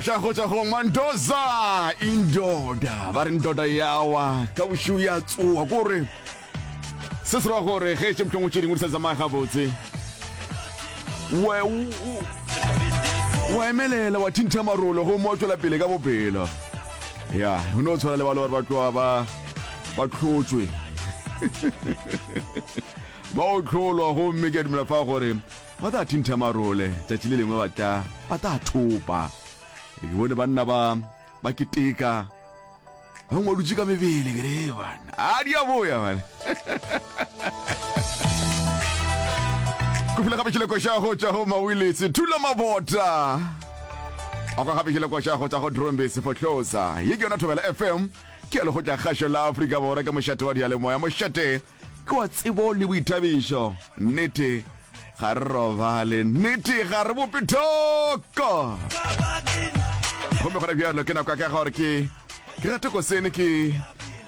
Tša go tša go Mandoza indoda ba re ndoda yawa ka bošiu ya tsoa kore se se ra gore ge tše mthong o tše dingwe di sa tsamaya gabotse wa wa emelela wa thintha marolo go mo tswela pele ka bophelo ya o ne o tshwana le ba le gore ba tloa ba ba tlhotswe ba o tlholwa gomme ke a dumela fa gore Ba tla thintha marole, tšatši le lengwe ba tla, ba tla thopa. Ke bone banna ba, ba keteka. Bangwe ba dutše ka mebele, ke re, bana, a di a boya, bana. Ke fula gape tšheleko xa go tša go mawiletse, thula mabota. A kwa gape tšheleko xa go tša go drombe sefohlosa. Ye ke yona Thobela FM, ke ya lekgotla kgašo la Afrika Borwa, ke mošate wa diyalemoya, mošate Ke wa tsebo le boithabišo. Nnete ga re robale. Nnete ga re bope thoko. Gomme gona bjalo ke nako ya ka gore ke ke rate ko sene ke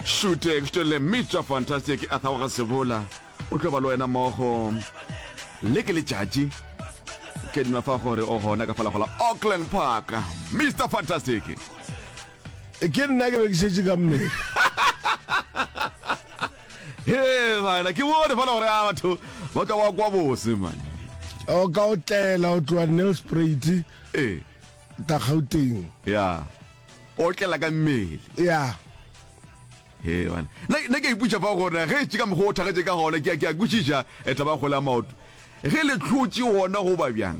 šute ke šutele mitswa fantastic a thago ga sebola o tlo ba le wena mogo le ke letšatši ke dima fa gore o gona ka falagola auckland park mr fantastic E ke nna ke be ke šetše ka mmele he bana ke bone fana gore a batho ba ka wa kwa bose mane o ka o tlela o tloa nelspruit ee ka gauteng ya o tlela ka mmele ya he bana ne ke iputša fa gore ge e tše ka mokgwa o thagetse ka gona ke a kwešiša etla ba kgole a maoto ge le tlhotše gona go ba bjang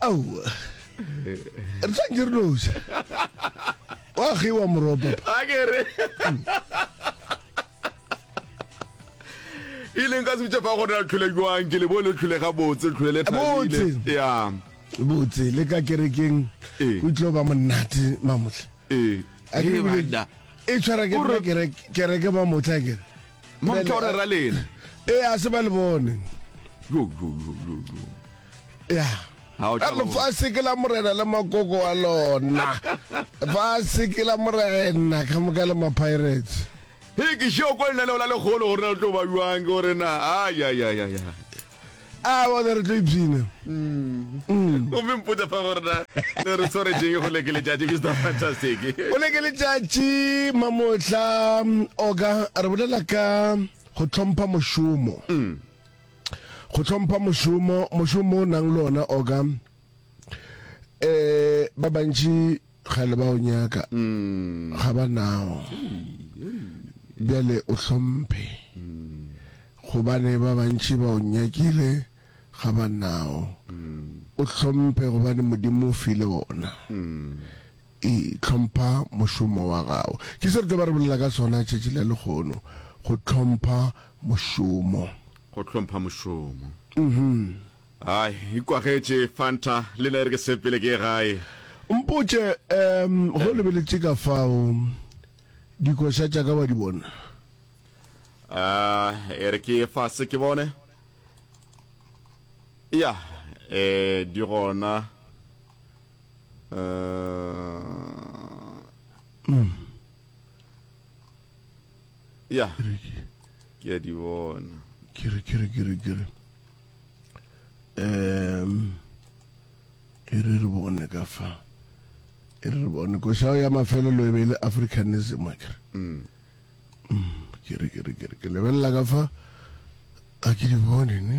Au. Re tla ke re noja. Wa ge wa moropa. A ke re. E leng ka se tšepa go re tlhole jwang ke le bo le tlhole ga botse tlhole le thabile. Ya. Botse le ka kerekeng. Eh. O tlo ba monate mamohle. Eh. A ke re e tshwara ke re kereke kereke ba motla ke. Mo tshwara ra lena. Eh a se ba le bone. Yo yo yo yo. ya lefase ke la morena le makoko wa lona lefase ke la morena ka moka le mapirates e ke šeo ko lenaneo la lekgolo gore na le tlo ba jwang ke gore na ayayaya a bone re tlo ipsina mm. mm. gomme mpotsa fa gore na le re tshware jeng go leke letšatši mr fantastic go leke letšatši mamotlha mm, oka re bolela ka go tlhompha mošomo mm. go tlhompha mošomo mošomo o nang le ona oka um eh, ba bantši ga le ba o nyaka mm. ga ba nao bjale o hlomphe mm. gobane ba bantši ba o nyakile ga ba nao mm. o hlomphe gobane modimo o file ona I. Hlompha mošomo wa gago. Ke se re tlo ba re bolela ka sona tšatši la lehono, go hlompha mošomo. Go hlompha mošomo. Ai, ikwagetše, Fanta, le nna e re ke sepele ke ye gae. Mpotše, um, ge o lebeletše ka fao, dikoša tša ka wa di bona? Um, e re ke ye fase ke bone. Ya, um, di gona. ya ke a di bona kere kere kere kere um e re re bone ka fa e re re bone košao ya mafelelo e be e le africanism a kere mm. mm, kere kere kere ke lebelela ka fa a ke di bone ne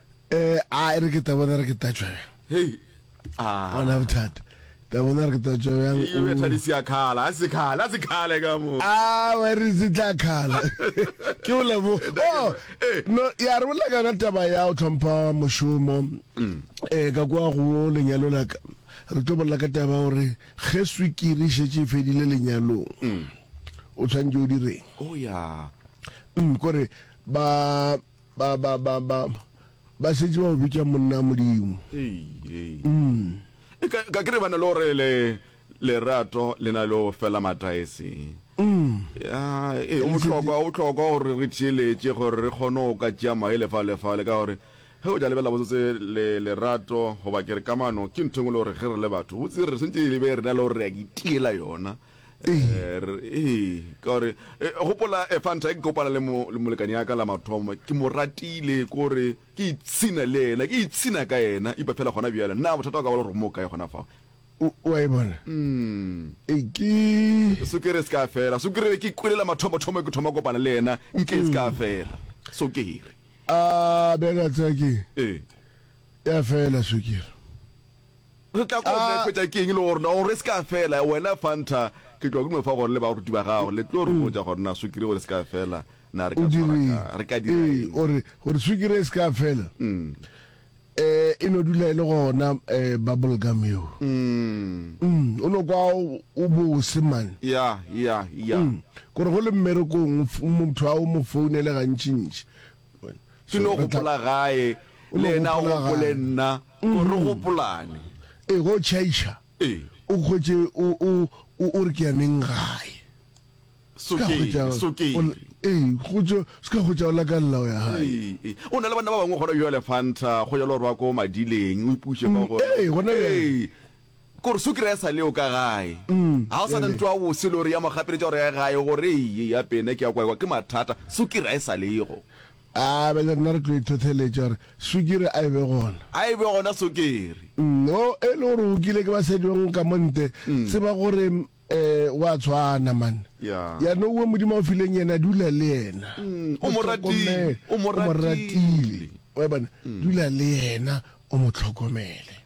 Eh, a e re ke ta bona re ke tatšwa bjang. Hei. Ah. Bona bothata. Ta bona re ke tatšwa bjang. E be thadi se ya khala, a se khala, a se khale ka mo. Ah, wa re se tla khala. Ke o lebo. Oh, eh. no ya re bolela kana taba ya o tlhompha moshomo. Mm. Eh, ka kwa go lenyalo la ka. Re tlo bolela ka taba gore ge swikiri e šetše e fedile lenyalong. Mm. O tshwanetse o direng? Oh, ya. Mm, kore ba Ba, ba, ba, ba, ba šetše ba o bitša monna a Modimo. Ee, ka, ka ke re ba na le gore le, lerato le na le go fela mataese. Ya, ee, go bohlokwa, go bohlokwa gore re theeletše gore re kgone go ka tšea maye lefa, lefale, ka gore ge o ja lebela botsotse le, lerato goba ke re kamano ke ntho engwe le gore ge re le batho botse re swantše e be re na le gore re a itiela yona. ee ka gore eh, gopola eh, fanta ke kopana le molekane ya ka la mathomo ke mo ratile kore ke itshina le ena ke itshina ka ena ipa fela gona bjale nna bothata wa ka bala gore mo kae gona fa wa e bona mm. e ke sukere se ka fela sukere ke kwelela mathomothomo ke thoma kopana le ena nke se ka mm. fela sukere a bjaka tsake ya fela sukere Re tla ko nna hwetša ke eng le gore na gore e se ka fela wena Fanta ke tloa kuno fa gore le baruti ba gago le tlo re botša gore na swikiri gore e se ka fela na re ka tshwara ka re ka dira eng gore gore swikiri e se ka fela e no dula e le gona bubble gum yo o no kwa o bose man ya ya ya gore go le mmerekong motho a o mo founele gantšintši ke no gopola gae le ena o gopole nna o re gopolane e go tšhaiša o kgwetše o re ke yaneng gae seka kgwetša o laka lleo ya gae o na le banna ba bangwe gona bjale fanta go jalo gore ba ko madileng o ipuše ka gore Gore sukiri ya sa le yo ka gae. Ga o sa na ntlo ya bose lori ya mo gapeletša gore ya gae gore eye ya pene ke ya kwaekwa ke mathata. Sukiri ga e sa le go. A bjale rena re tlo ithotheletša gore sukiri a e be gona. A e be gona sukiri. No e le gore o kile ke ba sedjong ka mo nte tseba gore wa tshwana man. Ya no uwe Modimo a o fileng yena dula le yena. O mo ratile. O mo ratile. Wa bona dula le yena o mo tlhokomele.